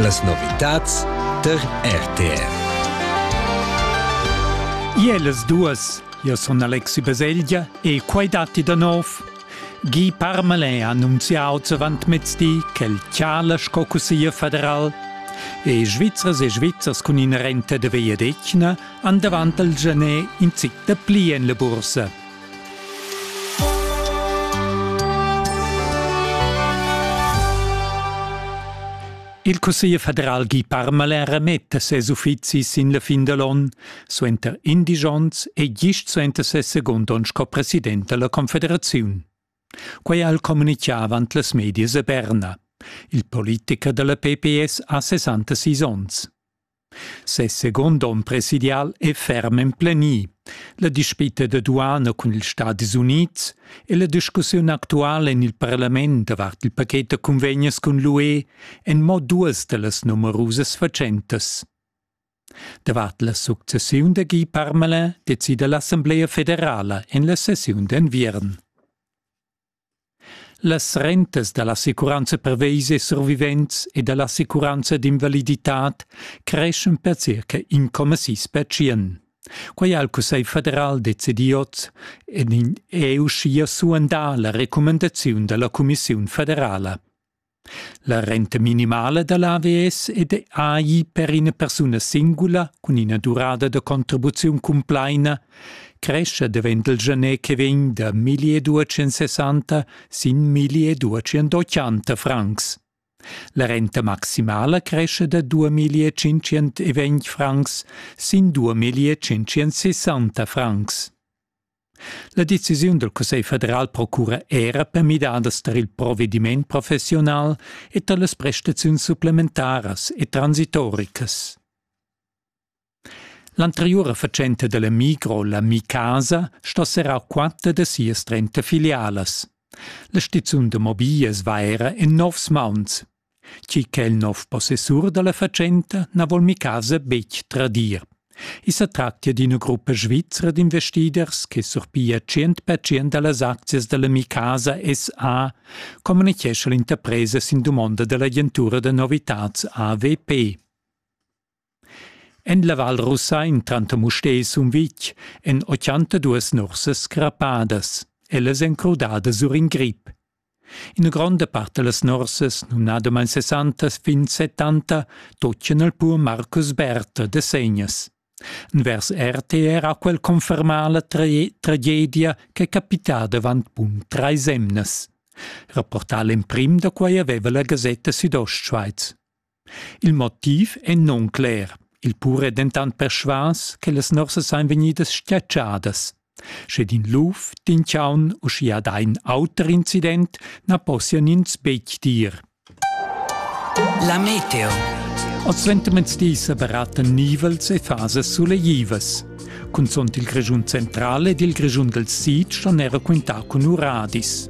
Las novitads der RTR. Ielas duas, io son Alexi Baselgia e quai datti da nov. Guy Parmelin ha annunziato avant mezdi ch'el tschala sco cusseglier federal e Svizzers e Svizzers cun ina renta da vegliadetgna han davant al Genet in zic da pli en la bursa. Il Cussegl federal Guy Parmalin remetta ses uffizis sin la fin da l'onn suenter indisch onns e gist suenter ses segund onn sco president da la Confederaziun. Quai al communitgà avant las medias a Berna. Il politicher da la PPS ha 66 onns. Ses second onn presidial è ferm emplenì. La dispita da duana cun ils Stadis Unids e la discussiun actuala en il parlament davart il paket da cunvegnas cun l'UE èn mo duas da las numerusas fatschentas. Davart la successiun da Guy Parmelin decida l'Assamblea federala en la sessiun d'enviern. Las rentas da l'assicuranza pervesa survivents e da l'assicuranza d'invaliditad creschan per circa incomma sis pertschient. Quai ha il Cussegl federal decidì oz ed è uschia suandà la recumandaziun da la cumissiun federala. La renta minimala da l'AVS è de AI per ina persuna singula cun ina durada da contribuziun cumplaina crescha davent il gener che vegn da 1260 sin 1280 francs. La renta maximala cresce da 2520 francs sin 2560 francs. La decisiun dal Cussegl federal procura era per midadas tar il provediment professiunal e tar las prestaziuns supplementaras e transitoricas. L'anteriura fatschenta della Migro, la Mi-Casa, sta serrà quatter da sias trenta filialas. La stiziun da mobiglias va era en novs mauns. Chi ch'el nov possessur dalla fatschenta na vol mi casa betg tradir. I sa tractia d'ina gruppa svizra d'investiders che surpia tschient pertschient dallas aczias dalla Mi Casa SA communichescha l'interpresa sin dumonda dall'agentura da novitads AVP. En la Val Rusain tanter Mustér e Sumvitg èn 82 nursas crappadas. Ellas èn crudadas sur in grip. Ina gronda part da las nursas, numnadamain 60 fin 70, toccan al pur Marcus Berther da Segnas. Vers RTR ha quel confermà la tra- tragedia ch'è capitada avant bun trais emnas. Rapportà l'emprim da quai aveva la gasetta Südostschweiz. Il motiv è nuncler, il pur è dentant persvas che las nuorsas ein vegnidas stiatschadas. Sche d'in luf, d'in chaun u schia da in auter incident na possian ins betg dir. La meteo. Oz suentermezdis baratten nivels e fasas suleivas. Cunzont il Grischun centrale ed il Grischun del Sid ston era quintar cun uradis.